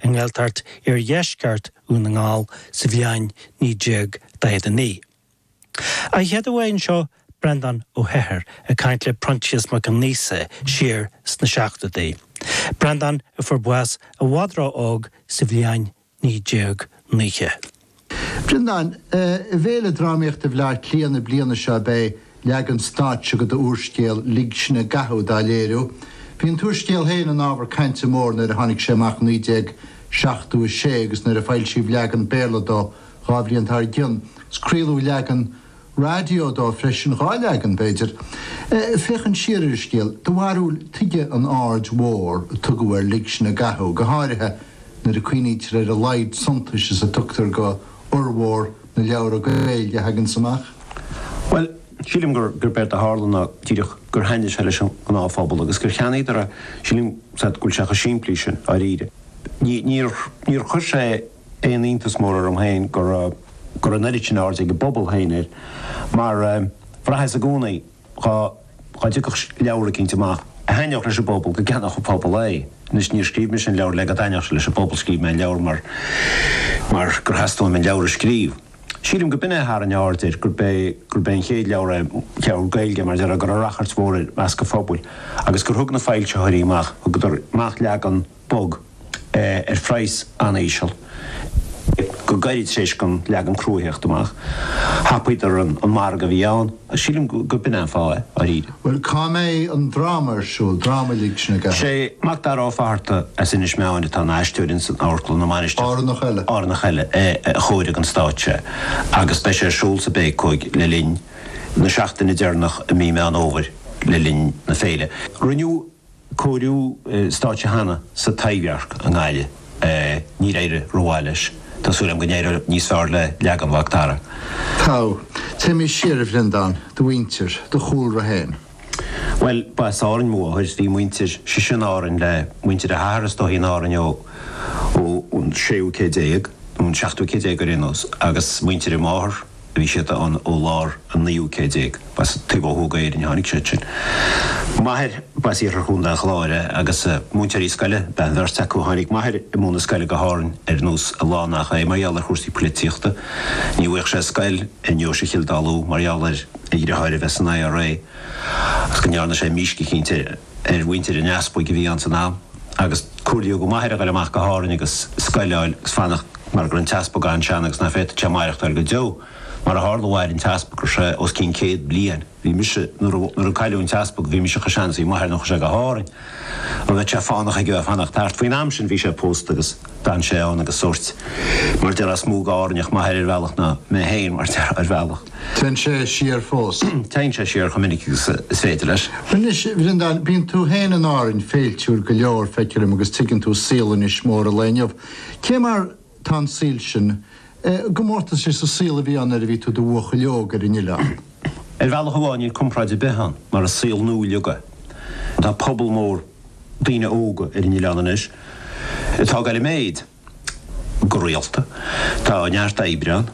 i nGaeltacht Iardheisceart Dhún na nGall sa bhliain 1949. An chéad mhír anseo Breandán Ó hEithir ag caint le Proinsias Mac Aonghusa siar sna seachtóidí, Breandán a fuair bás i bhfad ró-óg sa bhliain 1990. Breandán, I bhFéile Drámaíochta Bhleá Cliath na bliana seo beidh leagan stáitse de d'úrscéal Lig Sinn i gCathú dá léiriú. Bhí an t-úrscéal féin ina ábhar cainte mór nuair a tháinig sé amach 1976 agus nuair a foilsíodh leagan Béarla dó dhá bhliain dár gcionn, craoladh leagan. raidió dó freisin, dhá leagan, b'fhéidir. Féachaint siar ar an scéal, do bharúil tuige an aird mhór a tugadh ar Lig Sinn i gCathú, go háirithe nuair a cuimhnítear ar a laghad suntais is a tugtar go fhormhór na leabhra Gaeilge a thaganns amach? Bhuel, sílim gur, gurb éard a tharla ná díreach gur thaitnigh sé leis an ngnáthphobal agus gur cheannaíodar é. Sílim, sea, go bhfuil sé cho simplí sin, dháiríre. Ní, níor, níor chuir sé. aon iontas mór orm féin go raibh an oiread sin airde ag an bpobal féin air, mar bhraitheas i gcónaí dhá dtiocfadh leabhar eicínt amach a thaitneodh leis an bpobal, go gceannódh an pobal é. Anois, níor scríobh mise an leabhar le go dtaitneodh sé leis an bpobal, scríobh mé an leabhar mar gur theastaigh uaim an leabhar a scríobh. Sílim gurb in é a tharraing aird air, gurb é an chéad leabhar é, leabhar Gaeilge, mar a déarfá, a raibh rachairt mhór air i measc an phobail agus gur thug na foilsitheoirí amach, thugadar amach leagan, bog, ar phraghas an-íseal, go gairid tar éis don leagan crua a theacht amach. Thapaíodar an margadh a bhí ann. Sílim gurb in é an fáth é, dáiríre. Bhuel, cá mbeidh an dráma ar siúl, dráma Lig Sinn i gCathú. Sé Macdara Ó Fatharta as Inis Meáin atá ina aisteoir ins an Amharclann na Mainistreach, Árannach eile. Árannach eile a chóirigh don stáitse é agus beidh sé ar siúl sa bPéacóig le linn na seachtaine deireanach i mí Meán Fhómhair le linn na féile. Rinneadh cóiriú stáitse cheana sa Taibhdhearc i nGaillimh. Níor éirigh rómhaith leis. Tá súil agam go n-éireoidh níos fearr le leagan Mhacdara. Téimis siar, a Bhreandáin, do mhuintir, do chúlra féin. Bhuel, ba as Árainn mo mháthair, bhí a muintir sise in Árainn le muintir a hathar is dóigh in Árainn ó an séú céad déag, nó an seachtú céad déag ar aon nós, agus muintir a máthar, Bhí siad ann ó lár an naoú céad déag. B'as taobh ó thuaidh d'Éirinn a tháinig siad sin. M'athair, b'as iarthar Chontae an Chláir é agus múinteoirí scoile ab ea an bheirt acu. Tháinig m'athair i mbun na scoile go hÁrainn ar nós a lán nach é, mar gheall ar chúrsaí poilitíochta. Ní bhfuigheadh sé scoil i nDeoise Chill Dalua mar gheall ar a dhriotháir a bheith san IRA agus go ndearna sé mísc eicínt ar mhuintir an easpaig a bhí ann san am. agus comhairlíodh do m'athair a dhul amach go hÁrainn agus scoil a fháil agus fanacht mar go raibh an t-easpag an-sean agus nach bhféadfad sé maireachtáil go deo. Mar a tharla, mhair an t-easpag go raibh sé os cionn céad bliain. Bhí mise, nuair a, nuair a cailleadh an t-easpag, bhí mise chomh sean is bhí m'athair nuair a chuaigh sé go hÁrainn agus bheadh sé fánach aige fanacht thart. Faoin am sin bhí sé pósta agus. D'fhan sé ann agus sórt, mar a déarfá, is mó d'Árainneach m'athair ar bhealach, ná mé féin, mar a déarfá, ar bhealach. Téann sé siar fós. Téann sé siar chomh minic agus is féidir leis. Anois, a Bhreandáin, bíonn tú féin in Árainn féiltiúil go leor, feictear dom, agus tuigeann tú saol Inis Mór an lae inniu. Cé mar tá an saol sin i gcomórtas leis an saol a bhí ann nuair a bhí tú i do bhuachaill óg ar an Oileán? Ar bhealach amháin níl comparáid ar bith ann, mar is saol nua uilig é. Tá pobal mór. daoine óga ar an oileán anois atá ag goil i méid go rialta. Tá neart oibre ann.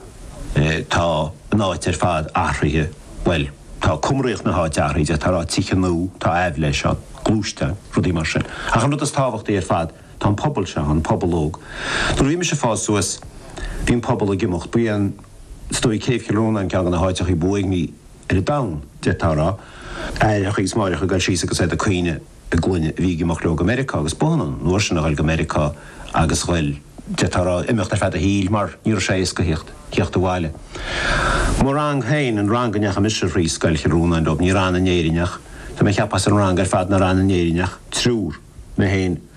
Tá an áit ar fad athraithe, bhuel, tá cumraíocht na háite athraithe de bharr tithe nua, tá aibhléis ann, gluaisteáin, rudaí mar sin. Ach an rud is tábhachtaí ar fad, tá an pobal seo ann, an pobal óg. Nuair a bhí mise ag fás suas, bhí an pobal ag imeacht. Ba é an, is dóigh, Céibh Chill Rónáin ceann de na háiteachaí ba uaigní. ar an domhan, d'fhéadfá a rá, aithreacha agus máithreacha ag dul síos agus iad ag caoineadh a gclainne a bhí ag imeacht leo go Meiriceá agus b'ionann an uair sin a ghoil go Meiriceá agus ghoil, d'fhéadfá a rá, imeacht ar feadh a shaoil mar ní raibh sé éasca theacht, theacht abhaile. Mo rang féin, an rang go ndeachaigh mise thríd, Scoil Chill Rónáin leob, ní raibh ann in Éirinn ach, tá mé ag ceapadh as an rang ar fad nár fhan in Éirinn ach triúr, mé féin,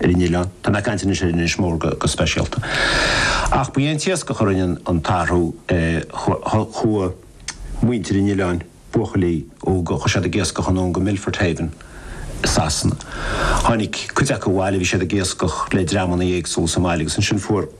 ar an oileán. Tá mé ag caint anois ar Inis Mór go speisialta. Ach ba é an t-iascach a rinne an t-athrú. Chuaigh muintir an oileáin, buachaillí óga, chuaigh siad ag iascach anonn go Milford Haven i Sasana. Tháinig cuid acu abhaile, bhí siad ag iascach le dreamanna éagsúla sa mbaile agus ansin fuair.